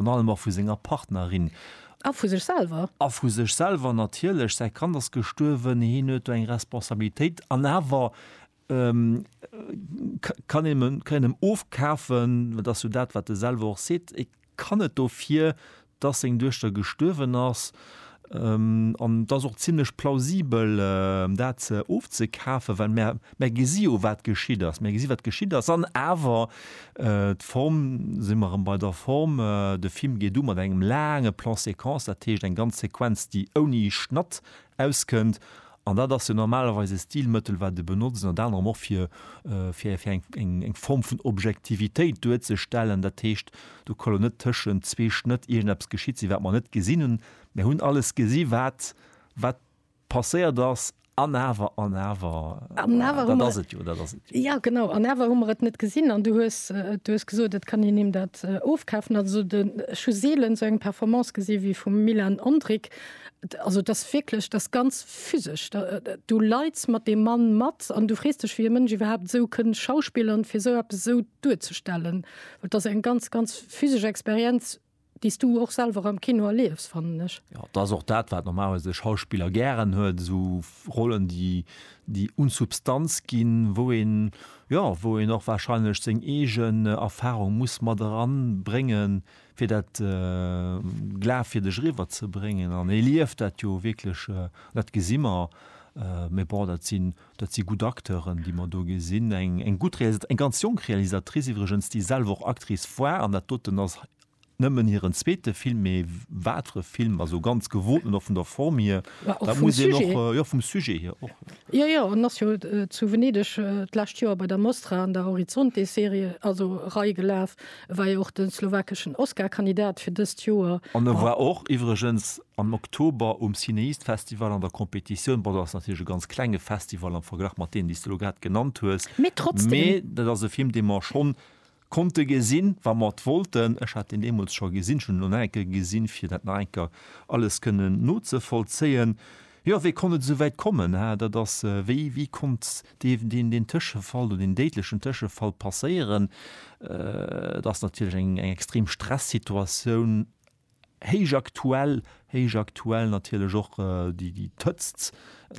an allem och vu senger Partnerin. A vu sech selwer. A vu sech selwer natierlech. Säi Kand ass gestuerwen, hien huet do eng Responsabilitéit an awer kann een him, kann een him ofkafen, dat ass jo dat wat e selwer och seet, e kann net dofir, dass seng Duechter gestuerwen ass, An et ass och zimlech plausibel, dat ofzekafen, well mär gesi jo, wat geschitt ass. Mär gesi wat geschitt ass. An awer, d'Form, si mer erëm bei der Form, de Film geet u mat engem laange Plan-séquence, dat heescht eng ganz Sequenz, déi ouni Schnatt auskënnt. An dat ass jo normalerweis e Stilmëttel, wat e benotzt, ënnert anerem och fir eng Form vun Objektivitéit duerzestellen. Dat heescht, do ka lo net tëschent zwee Schnëtt iergendeppes geschitt sinn, wat mer net gesinn hunn. Mir hunn alles gesi wat passéiert ass, an awer, an awer, dat ass et jo, dat ass et jo. Jo, genau, an awer hu mer et net gesinn. An du hues gesot, et kann een him dat ofkafen. Also ech hu seelen esou eng Performance gesi wéi vum Milan Ondrick, Also et ass wierklech, et ass ganz physesch. Du leits mat deem Mann mat an du frees dech, wéi e Mënsch iwwerhaapt esou kënn schauspillern, fir esou eppes esou duerzestellen. Well et ass eng ganz, ganz physesch Experienz, déi s du och selwer am Kino erliefs, fannen ech. Jo, et ass och dat, wat normalerweis e Schauspiller gären huet, esou Rollen, déi, déi un Substanz ginn, wou een, jo, wou een och warscheinlech seng eegen Erfarung muss mat eranbréngen, fir dat Glaf fir dech eriwwer ze bréngen an e lieft dat jo wierklech, dat gesi mer. Mee bon, dat sinn, dat si gutt Acteuren, déi mer do gesinn. Eng, eng gutt Realisat-, eng ganz jonk Realisatrice iwwregens, déi selwer och Actrice war an dat doten ass nëmmen hiren zweete Film. Mee wat fir e Film, also ganz gewoten och vun der Form hier, dat muss een och, jo vum Sujet hier och. Jo, jo, en ass jo zu Venedeg d'lescht Joer bei der Mostra an der Horizonte-Serie, also Rei gelaf, E war jo och de slowakeschen Oscar-Kandidat fir dëst Joer. An e war och iwwregens am Oktober um Cinéist-Festival an der Competitioun. Bon, dat ass natierlech e ganz klenge Festival am Verglach mat deenen, déi s de elo grad genannt hues. Mee trotzdem. Mee dat ass e Film, dee mer schonn konnte gesinn, wa mer et wollten. Ech hat en deemools scho gesinn. Ech hunn en elo nach eng Kéier gesinn, fir dat nach eng Kéier alles kënnen nozevollzéien. Jo, wéi konnt et esou wäit kommen? Dat ass, wéi, wéi konnt deen Tëschefall oder deen déidlechen Tëschefall passéieren. Et ass natierlech eng extrem Stressituatioun, héich aktuell, héich aktuell natierlech och déi d'Hëtzt,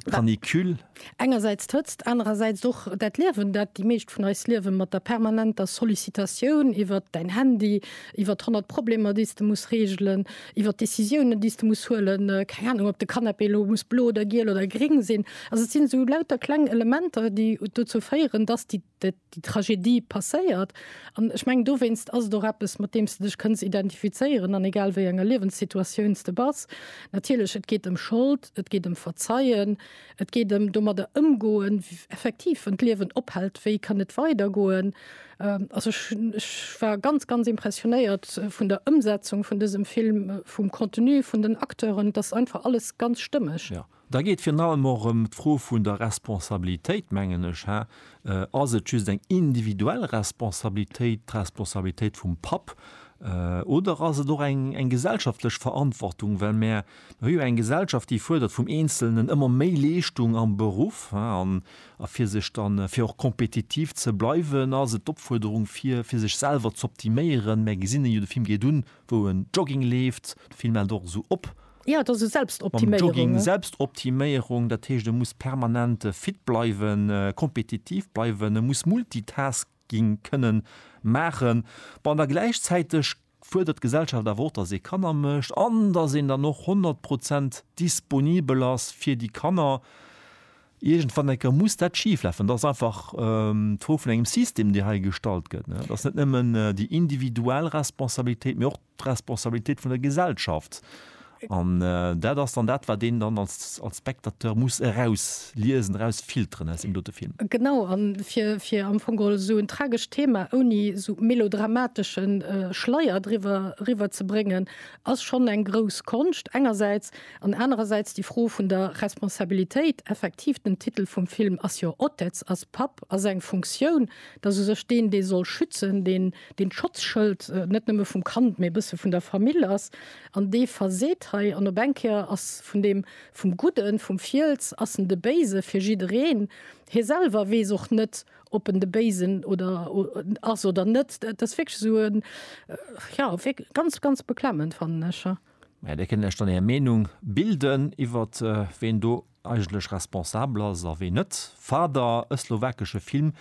d'Canicule. Engersäits d'Hëtzt, anerersäits och dat Liewen, dat déi meescht vun eis liewen, mat der permanenter Sollicitatioun iwwert däin Handy, iwwert honnert Problemer, déi s de muss reegelen, iwwer d'Décisiounen déi s de muss huelen, keng Ahnung ob de Canapé elo muss blo oder giel oder gréng sinn. Also et sinn esou lauter kleng Elementer déi dozou féieren dass déi déi Tragedie passéiert an ech mengen dowéinst ass et och eppes mat deem s de dech kënns identifizéieren an egal wéi enger Liewenssituatioun s de bass. Natierlech et geet ëm Schold, et geet ëm Verzeien, Et geet ëm domadder ëmgoen, effektiv, wann d'Liewen ophält, wéi kann et weidergoen? Also ech, ech war ganz, ganz impressionéiert vun der Ëmsetzung vun dësem Film, vum Contenu, vun den Acteuren. Et ass einfach alles ganz stëmmeg. Jo, da geet virun allem och ëm d'Fro vun der Responsabilitéit, mengen ech. Hä? Ass et just eng individuell Responsabilitéit, d'Responsabilitéit vum Papp, oder ass et och eng, eng gesellschaftlech Verantwortung, well mär Mir hu jo eng Gesellschaft, déi fuerdert vum Eenzelnen ëmmer méi Leeschtung am Beruff. An a fir sech dann, fir och kompetitiv ze bleiwen, ass et d'Opfuerderung, fir fir sech selwer z'optiméieren. Mär gesinn en jo, de Film geet un, wou en Jogging leeft. De Film hält och esou op. Jo, et ass esou Selbstoptiméierung. Mam Jogging, Selbstoptiméierung. Dat heescht, e muss permanent fit bleiwen, kompetitiv bleiwen, e muss Multitasking kënnen maachen. Bon, an da gläichzäiteg fuerdert d'Gesellschaft awer och, datt ee Kanner mécht an datt een dann och 100 Prozent disponibel ass fir déi Kanner. Iergendwann eng Kéier muss dat schiflafen. Dat ass einfach d'Fro vun engem System, dee hei gestallt gëtt. Dat ass net nëmmen déi individuell Responsabilitéit, mee och d'Responsabilitéit vun der Gesellschaft, An dat ass dann dat, wat een dann als Spectateur muss erausliesen, erausfilteren aus deem dote Film. Genau, a fir am Fong geholl esou en tragescht Thema ouni esou melodramatesche Schleier driwwer eriwwer ze bréngen, ass schonn eng grouss Konscht engersäits, an anerersäits déi Fro vun der Responsabilitéit. Effektiv, den Titel vum Film ass jo Otec, ass Papp, ass eng Funktioun. Dat ass u sech deen, dee soll schützen, deen d'Schotzschëld net nëmme vum Kand, mee e bësse vun der Famill ass. An dee verseet hei, an op eng Kéier ass vun deem, vum Gudden, vum Fiels, ass en de Béise fir jiddereen. Hie selwer weess och net, ob en de Béisen oder ass oder net. Et ass wierklech esou e, jo, wierklech ganz, ganz beklemmend, fannen ech. Mä Dir kënnt lech dann Är Meenung bilden iwwert ween do eigentlech responsabel ass a ween net. Fader, e slowakesche Film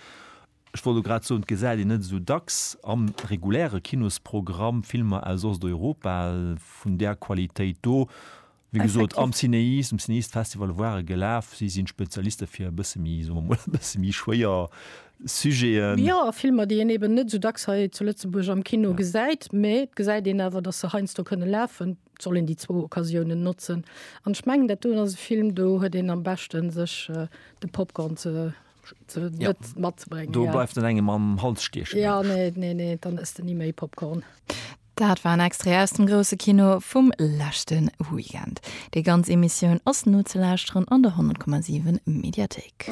Ech wollt elo grad soen, et gesäit een net esou dacks am reguläre Kinosprogramm Filmer aus Osteuropa vun där Qualitéit do. Wéi gesot, am Cinéis, um Cinéistes-Festival ware gelaf, si sinn Spezialiste fir e bësse méi, soe mer emol, e bësse méi schwéier Sujeten. Jo, a Filmer, déi een eben net esou dacks hei zu Lëtzebuerg am Kino gesäit. Mee et gesäit een awer, datt se heiansdo kënne lafen. Et soll een déi zwou Occasiounen notzen. An ech mengen, dat doen ass e Film, do huet een am beschten, sech de Popcorn ze ja. matzebrengen do ja. bleibt den engem am Hals stiechen ja nee nee nee dann ist den nie méi Popcorn Dat war en extra aus dem grosse Kino vum lächten Weekend. Déi ganz Emissioun ass nozeläschteren an der 10,7 Mediathek.